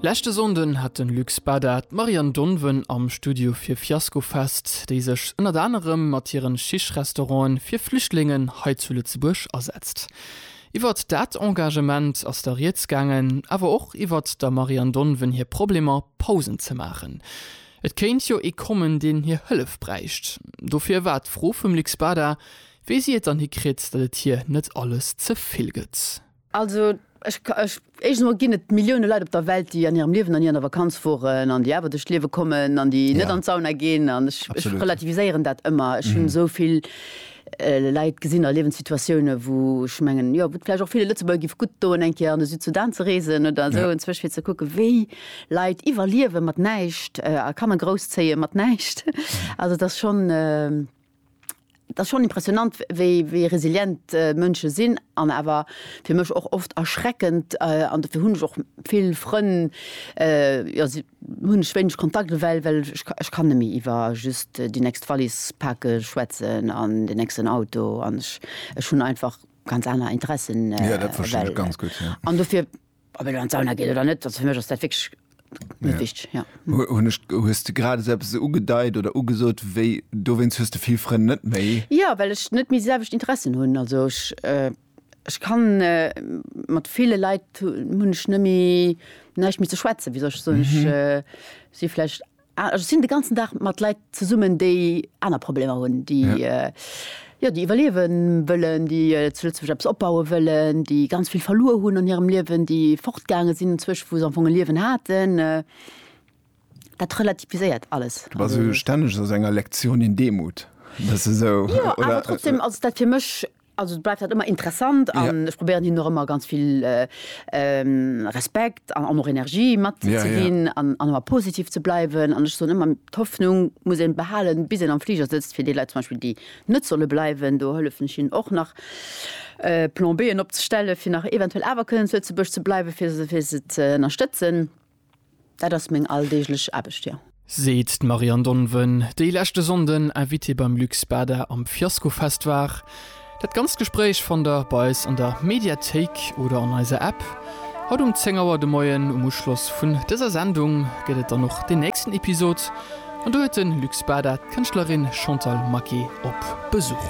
Leschte Sonnden hat den Luc Spada d'Marianne Donven am Studio fir Fiasco Fest, déi sech ënnert anerem mat hiren Schichtrestauranten fir Flüchtlingen hei zu Lëtzebuerg asetzt. Iwwert dat Engagement ass da rieds gaangen, awer och iwwert der Marianne Donven hir Problemer Pausen ze maachen. Et kéint jo ee kommen, deen hir Hëllef bräicht. Dofir war d'Fro vum Luc Spada, wéi si et dann hikritt, datt et hir net alles ze vill gëtt. Also, ech, ech, éischtens emol ginn et Milliounen Leit op der Welt, déi an hirem Liewen an ni an der Vakanz woren an déi awer duerch d'Liewe kommen an déi net Ja. an d'Sauna ginn an ech, ech Absolut. relativiséieren dat ëmmer. Ech hunn esou vill Leit gesinn a Liewenssituatiounen, wou ech mengen, jo, wou et vläicht och ville Lëtzebuerger giff gutt doen, eng Kéier an de Südsudan ze reesen oder esou Ja. enzwech, fir ze kucken, wéi Leit iwwerliewe mat näischt a Kanner grousszéie mat näischt. Also, et ass schonn. Et ass schonn impressionant, wéi, wéi resilient Mënsche sinn an awer fir mech och oft erschreckend. An dofir hunn ech och vill Frënn, jo, si hunn ech wéineg Kontakt ewell, well ech, ech kann net méi iwwer just déi nächst Wallis pake schwätzen an den nächsten Auto an ech, ech hunn einfach ganz aner Interessen ewell. An dofir Ob elo an d'Sauna geet oder net, also fir mech ass dat wierklech net wichteg, jo. Hunn ech, hues de grad esou eppes ugedeit oder ugesot, wéi dowéinst hues de vill Frënn net méi? Jo, well ech net méi déi selwecht Interessen hunn. Also ech, ech kann mat ville Leit hunn ech net méi, näischt méi ze schwätzen, wéi soll ech soen, ech si vläicht, Ech sinn de ganzen Dag mat Leit zesummen, déi aner Problemer hunn, déi, jo, déi iwwerliewen wëllen, déi zu Lëtzebuerg eppes opbauen wëllen, déi ganz vill verluer hunn an hirem Liewen, déi fortgaange sinn enzwësch, wou se am Fong e Liewen haten. Dat relativiséiert alles. Du bass stänneg a sou enger Lektioun in Demut, bass du esou, oder? Jo, awer trotzdem ass dat fir mech Also et bleift halt ëmmer interessant an ech probéieren hien och ëmmer ganz vill Respekt an och Energie matzeginn an ëmmer positiv ze bleiwen. An ech soen ëmmer, d'Hoffnung muss een behalen, bis een am Fliger sëtzt. Fir déi Leit zum Beispill, déi net solle bleiwen, do hëllefen ech hinnen och nach Plan B'en opzestellen, fir nach eventuell awer kënnen zu Lëtzebuerg ze bleiwen, fir se ze ënnerstëtzen. Dat ass meng alldeeglech Aarbecht, jo. Seet d'Marianne Donven, déi leschte Sonnden Invitée beim Luc Spada am Fiaskofest war. Dat ganzt Gespréich fannt der bei eis an der Mediathéik oder an eiser App. Haut um 10 Auer de Moien, um Uschloss vun dëser Sendung, gëtt et dann och den nächsten Episod an do huet de Luc Spada d'Kënschtlerin Chantal Maquet op Besuch.